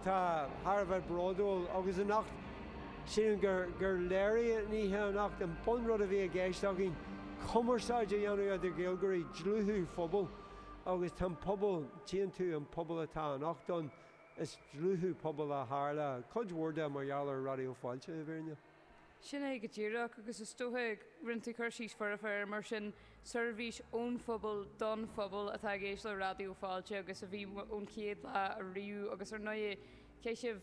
Tá mé thar a bheith bródúil agus anocht sílim gur léirigh an oíche anocht an bunrud a bhí i gceist againn, cumarsáid a dhéanamh idir Gaeilgeoirí, dlúthú pobail agus tá an pobal tiontú, an pobal atá anocht ann, is dlúthú pobail a tharla cuid mhór de mar gheall ar Raidió Fáilte i bhfírinne. Sin é go díreach, agus is dócha go ndéanann tú cur síos foirfe air. Mar sin, seirbhís ón phobal, don phobal, atá i gceist le Raidió Fáilte agus a bhí ón chéad lá ariamh agus, ar ndóigh, chaith sibh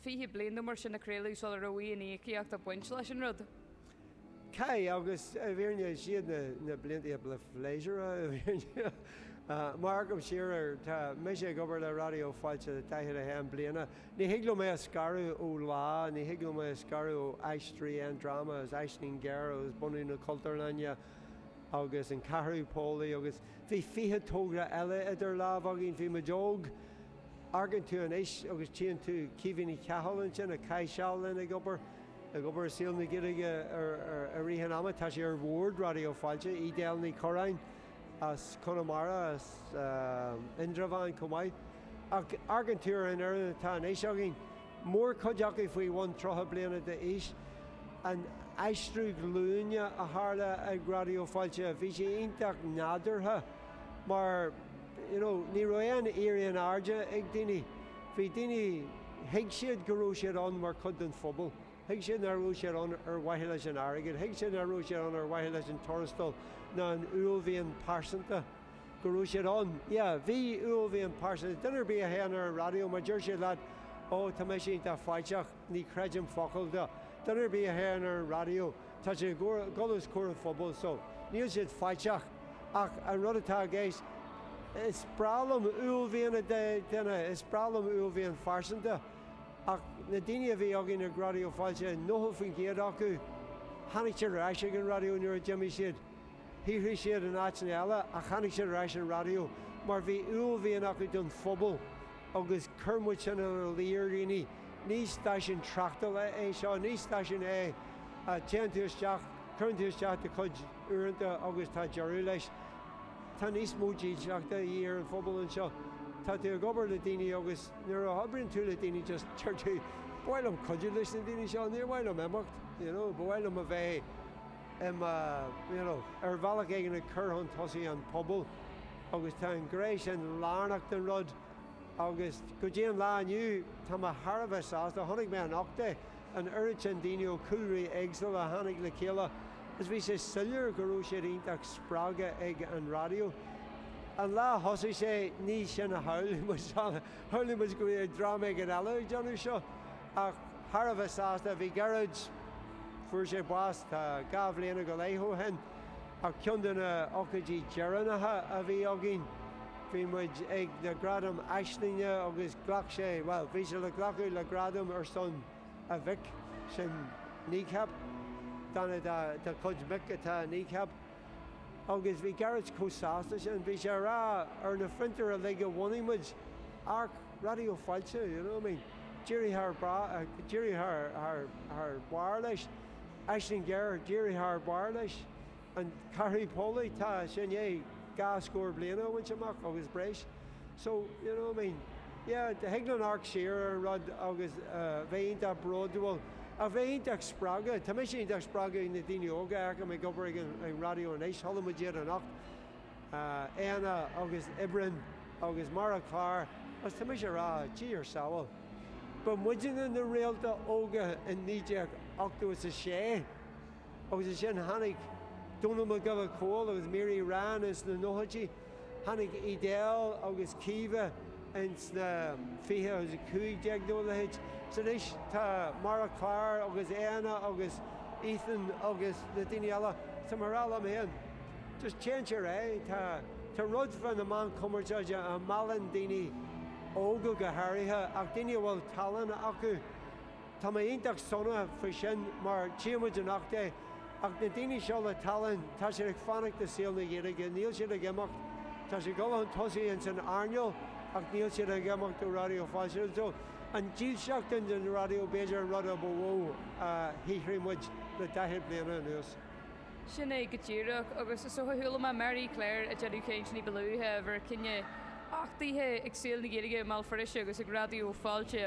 20 bliain nó mar sin ag craoladh sula raibh aon íocaíocht ag baint leis an rud. Chaith, agus i bhfírinne is iad na blianta ba phléisiúrtha, i bhfírinne. Nuair a amharcaim siar air, tá mise ag obair le Raidió Fáilte le 41 bliana. Ní thig liom é a scaradh ó Lá, ní thig liom é a scaradh ó Aisteoirí Aon Dráma agus Aisling Ghéar agus bunú na Cultúrlainne agus an Ceathrú Póilí agus bhí fiche togra eile idir lámh againn, bhí muid óg. Amharcann tú anois agus tchíonn tú Caoimhe Ní Chathail ansin a chaith seal linn ag obair, ag obair i saol na Gaeilge i rith an ama, tá sé ar Bhord Raidió Fáilte, Edel Ní Churraoin, as Conamara, as Indreabhán chomh maith, ach amharcann tú ar an fhoireann atá anois againn, mórchuid acu faoi bhun 30 bliana d'aois, an aistriú glúine a tharla ag Raidió Fáilte, bhí sé iontach nádúrtha mar you know ní raibh aon éirí in airde ag daoine, bhí daoine, thuig siad go raibh siad ann mar chuid den phobal. Thuig siad nach raibh siad ann ar mhaithe leis an airgead, thuig siad nach raibh siad ann ar mhaithe leis an tuarastal ná an uaillmhian pearsanta go raibh siad ann. Yeah, bhí uaillmhian pearsanta. Duine ar bith a théann ar an raidió, má deir siad leat, Ó, tá mise iontach faiteach, ní chreidim focal de. Duine ar bith a théann ar an raidió, tá siad ag dul os comhair an phobail so níl siad faiteach ach an rud atá i gceist, is breá liom uaillmhian i nduine, is breá liom uaillmhian phearsanta. Ach na daoine a bhí againn ag Raidió Fáilte, 90% acu, tháinig siad ar ais ag an raidió nuair a d'imigh siad. Shaothraigh siad in áiteanna eile ach tháinig siad ar ais an raidió mar bhí uaillmhian acu don phobal agus chuir muid sin ina luí ar dhaoine, ní stáisiún tráchtála é seo, ní stáisiún é a dtéann tú isteach, cuireann tú isteach do chuid uaireanta agus tá deireadh leis. Tá níos mó dílseachta de dhíth ar an phobal anseo. Tá tú ag obair le daoine agus Nuair a oibríonn tú le daoine just deir tú ba mhaith liom cuidiú leis na daoine seo, níor mhaith liom imeacht, you know, ba mhaith liom a bheith im, uh, you know, ar bhealach éigin ag cur chun tosaigh an pobal agus tá an ghné sin lárnach don rud agus go dtí an lá inniu tá mé thar a bheith sásta, chonaic mé anocht é. an oiread sin daoine ó chúlraí éagsúla a tháinig le chéile agus bhí sé soiléir go raibh siad iontach spreagtha ag an raidió. An lá a thosaigh sé, ní sin a shamhlaigh muid. Shamhlaigh muid go mbeadh dream éigin eile ag déanamh seo, ach thar a bheith sásta a bhí Gearóid. Fuair sé bás tá dhá bhliana go leith ó shin, ach ceann de na hócáidí deireanacha a bhí againn, Bhí muid ag na gradaim Aislinge agus ghlac sé, bhuel, bhí sé le glacadh le gradam ar son a mhic, sin Kneecap, duine dá chuid mic atá i Kneecap. Agus bhí Gearóid chomh sásta sin, bhí sé a rá ar na fiontair uilig a bhunaigh muid, amharc, Raidió Fáilte, you know, I mean, d'éirigh thar d'éirigh thar barr leis, Aisling Ghéar, d'éirigh thar barr leis. An Ceathrú Póilí, tá sé i ndiaidh dhá scór bliain a bhaint amach agus breis. So, you know, I mean, yeah, thig linn amharc siar ar an rud agus bheith iontach bródúil, ach bheith iontach spreagtha. Tá mise iontach spreagtha ag na daoine óga a fheicim ag obair ag an raidió anois, chuala muid iad anocht, Éanna agus Oibreán agus Mary Claire, agus tá mise a rá, Dia ár sábháil, ba muidinne na réalta óga in 1986. Agus ansin tháinig Dónall Mac Giolla Chóill agus Mary Ryan ins na nóchaidí, tháinig Edel agus Caoimhe ins na fiche agus a cúig déag nó a leithéid. So anois tá Mary Claire agus Éanna agus Ethan agus na daoine eile, tá mé a rá liom féin, just téann sé ar aghaidh, tá tá rud fá na meáin chumarsáide a mheallann daoine óga go háirithe ach daoine a bhfuil tallann acu, Tá mé iontach sona faoi sin mar tchíonn muid anocht é. Ach na daoine seo le tallann, tá siad ag fanacht i saol na Gaeilge, níl siad ag imeacht. Tá siad ag dul chun tosaigh ins an earnáil ach níl siad ag imeacht ó Raidió Fáilte. So, an dílseacht sin don raidió b'fhéidir an rud a ba mhó a shaothraigh muid le daichead bliana anuas. Sin é go díreach. Agus is dócha chuala mé Mary Claire ag déanamh caint ní ba luaithe, a bharr cinneadh achtaithe ag Saol na Gaeilge i mBéal Feirste agus ag Raidió Fáilte.